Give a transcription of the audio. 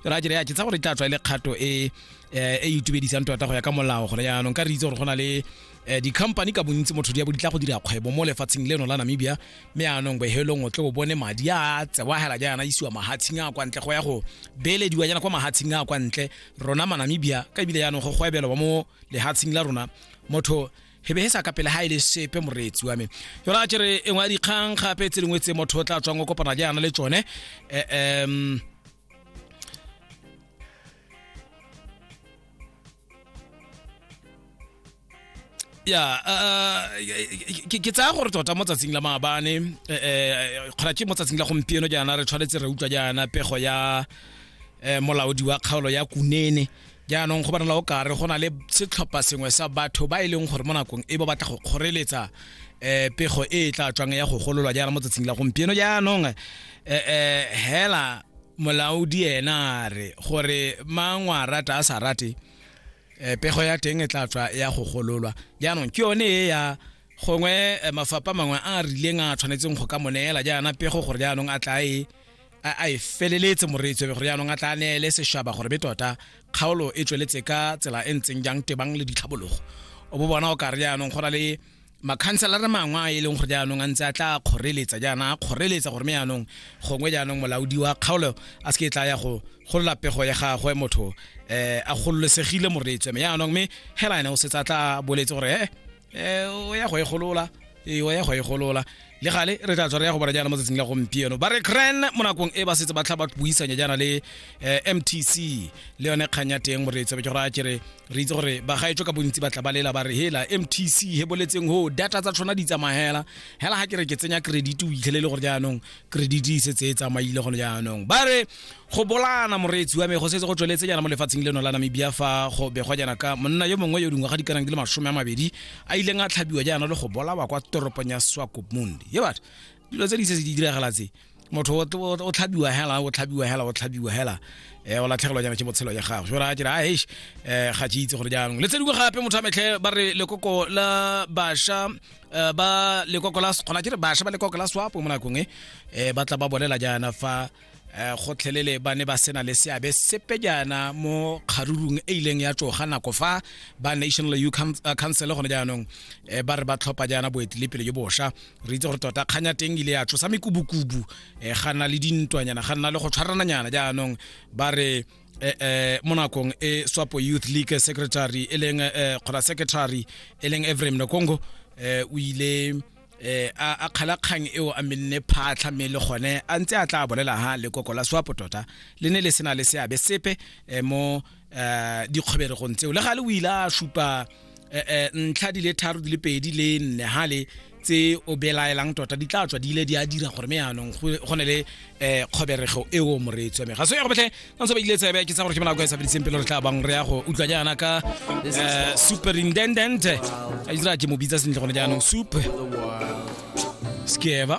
ra jere ya ke tsa gore tla tswa ile kgato e eh, e itumedisang tota go ya ka molao gore yaanong ka re itse gore go na le eh, di-company ka bontsi motho di ya bo di tla go dira kgwebo mo lefatsheng leno la namibia mme yaanong bohelong o tle o bone madi a tsewa hela jaana isiwa mahatsheng a kwa ntle go ya go beelediwa jaana kwa mahatsheng a kwa ntle rona manamibia ka ebile yaanong go gwebelwa mo lehatsheng la rona motho he behesa ka pele ha ile sepe moretsi wa me yona a tšere e ngwa dikgang gape tse dingwe tse motho o tla tswang o kopana jaana le tsone um ya ke tsaya gore tota mo tsatsing la maabane kgona ke mo tsatsing la gompieno jaana re tshwanetse re utlwa jaana pego ya um molaodi wa kgaolo ya kunene jaanong go bonala o kare go na le setlhopha sengwe sa batho ba e leng gore mo nakong e ba batla go kgoreletsa um pego e e tla tswang ya go gololwa jaana mo tsatsing la gompieno jaanong um hela molaodi ena a re gore mangwe a rata a sa rate um pego ya teng e tla tswa ya go gololwa jaanong ke yone e ya gongwe mafapha mangwe a a rileng a tshwanetseng go ka mo neela jaana pego gore jaanong a tla e a e feleletse moreetsi gore yaanong a tla neele seshaba gore be tota kgaolo e tsweletse ka tsela e ntseng jang tebang le ditlhabologo o bo bona o ka re jaanong go na le makhanselare mangwe a e leng gore jaanong a ntse a tla kgoreletsa jaana a kgoreletsa gore me jaanong gongwe jaanong molaodi wa kgaolo a se ke e tla ya go golola pego ya gagwe motho um a gololesegile moreetswe me jaanong me hela ene o setse a tla boletse gore ee um o ya go e golola ee o ya go e golola le gale re tla tswa re ya go bona jaana mo tsatsing la gompieno ba re cran mo nakong e ba setse ba tlha ba buisanya jaana le um mtc le yone kgang ya teng gore tsebe ke gore a kere re itse gore bagaetsho ka bontsi ba tla ba lela ba re hela mtc he boletseng ho data tsa tshwana di tsamagela hela ga ke re ke tsenya credit o itlhelele gore jaanong credit e setse e tsamaile gone jaanong ba re go bolana moreetsi wa me go setse go tsweletse jana mo lefatsheng leno la namibia fa go begwa jana ka monna yo mongwe yo dingwaga di kanang di le masome a mabedi a ileng a tlhabiwa jaana le go bolawa kwa toropong ya swakopmund ye batho dilo tse di se di diragala tse motho o tlhabiwa hela o tlhabiwa hela o tlhabiwa hela um o latlhegelwa jana ke botshelo ya gago jora a kere a hesh um eh, ga ke itse gore jaanong le tse dingwe gape motho a metlhe ba re lekoko la basha eh, ba lekoko la kgona ke re basha ba lekoko la swapo mo nakong e ba tla ba bolela jaana fa um gotlhelele ba ne ba sena le seabe sepe jaana mo kgarurung e ileng ya tsoga nako fa ba national u eh, council gone jaanong um ba re ba tlhopha jaana boetelepele jo bosha re itse gore tota kganya teng ile ya tsosa mekubukubu um ga nna le dintwanyana ga nna le go tshwarananyana jaanong ba re eh, eh, mo nakong e swapo youth league secretary e leng eh, kgona secretary e leng evrem nokongo eh, o ile eh a kgalakgang eo a menne phatlha mme le gone a ntse a tla bolela ha lekoko la swapo tota le ne le sena le seabe sepe eh, mo eh, dikgweberegong tseo le ga le o ile a supa eh, ntlha di le tharo di le pedi le nne ha le tse o belaelang tota di tla tswa di ile di a dira gore me yaanong go ne le eh kgoberego e o moreetsi wa me ga se ya go botlhe ka ntse ba ile tsebe ke tsa gore ke bonako e sa feditseng pele re tla bang re ya go utlwa jaana ka eh, superintendent a itse ra ke mo bitsa sentle gone jaanong soup skeva